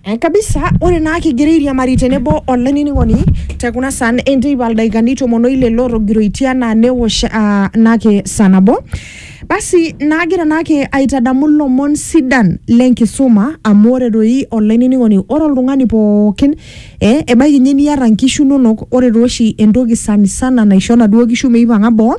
Eh, kabisa ore naa kigira airiamari tenebo olainining'oni te kuna saan enteipa ildaikani tomon oile lootogiroitie anaa newosh ah, naake saa nabo basi naagira naake aitadamu ilomon sidan lenkisuma amu ore doi olainining'oni ore oltung'ani pookin eh, ebaiki ninye niata inkishu inonok ore tooshi entoki sanisana naisho inaduo kishu meipang'a boo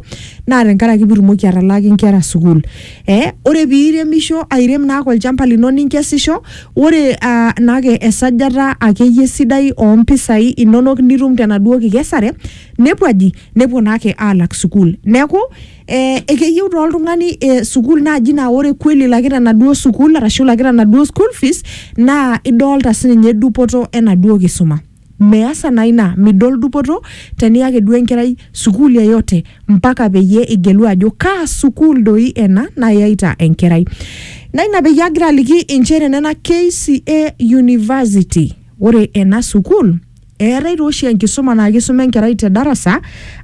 naa tenkaraki pitumoki atalaaki inkera sukuul Eh, ore piiremisho airem naake olchamba lino ninkesisho, ore ah, naake esajata akeyie sidai oo mpisai inonok nitum tenaduo kikesare nepuo aji, nepuo naake aalak sukuul. Neeku eh, ekeyieu taa oltung'ani eh, sukuul naaji naa ore kweli ilakita enaduo sukuul arashu ilakita enaduo school fees naa idolta sininye dupoto enaduo kisuma. Measa naa ina midol dupoto teni ake duo enkerai sukuul yeyote mpaka peyie igelu ajo kaa sukuul doi ena nayaita enkerai. Naa ina peyie agira aliki inchere nena KCA university. Ore ena sukuul eetae taa oshi enkisuma naa kisuma enkerai te darasa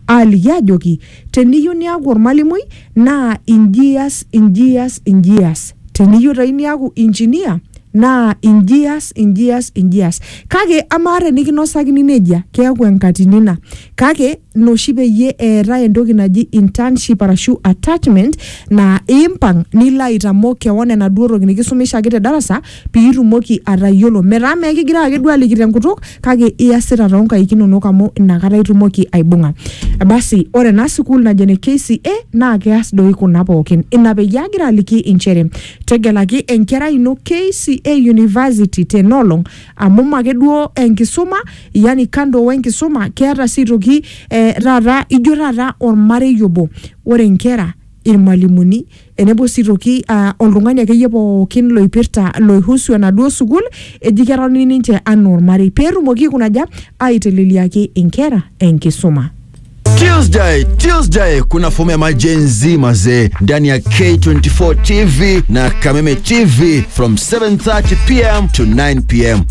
aaliki aajoki Teniyieu niaku olmalimui naa inji ias inji ias inji ias. Teniyieu doi niaku engineer naa inji ias inji ias inji ias. Kake amaa tenikinosakini nejia keeku enkatini ina. Kake ina oshi peyie eetae entoki naji internship arashu attachment naa impang nilo aitamok kewon enaduo toki nikisumishaki te darasa piitumoki atayiolo metaa mee kigira ake duo aliki tenkutuk kake iasita toonkaik inonok amu inakata itumoki aibung'a basi ore ena sukuul najo ene KCA naa keas doi kuna pookin ina peyie agira aliki inchere tegelaki enkerai ino KCA University tenolong amu make duo enkisuma yani kando wenkisuma keeta sii aitoki eh, taata ijo taata ormarei obo ore inkera irmalimuni Tenebo sii toki uh, oltung'ani akeyie pookin loipirta loihusu enaduo sukuul eji ketoni ninche anaa ormarei peetumoki aikunaja aiteleliaki inkera enkisuma. Tuesday, Tuesday kuna fomu ya majenzi mazee ndani ya K24 TV na Kameme TV from 7:30 pm to 9 pm.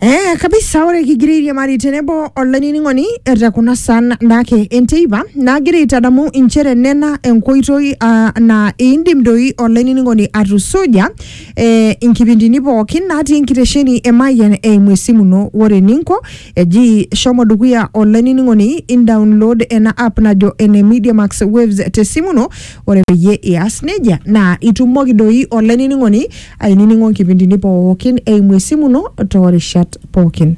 Eh, kabisa ore kigira airiamari tenebo olainining'oni te kuna san naake enteipa naagira aitadamu inchere nena enkoitoi ah, naa indim doi olainining'oni atusuja eh, inkipindini pookin natii enkitesheni e Mayian eimu esimu ino ore eninko eji shomo dukuya olainining'oni indownload ena app najo ene Media Max Waves tesimu ino ore peyie ias nejia naa itumoki doi olainining'oni ainining'o nkipindini pookin eimu esimu ino toorishat pookin.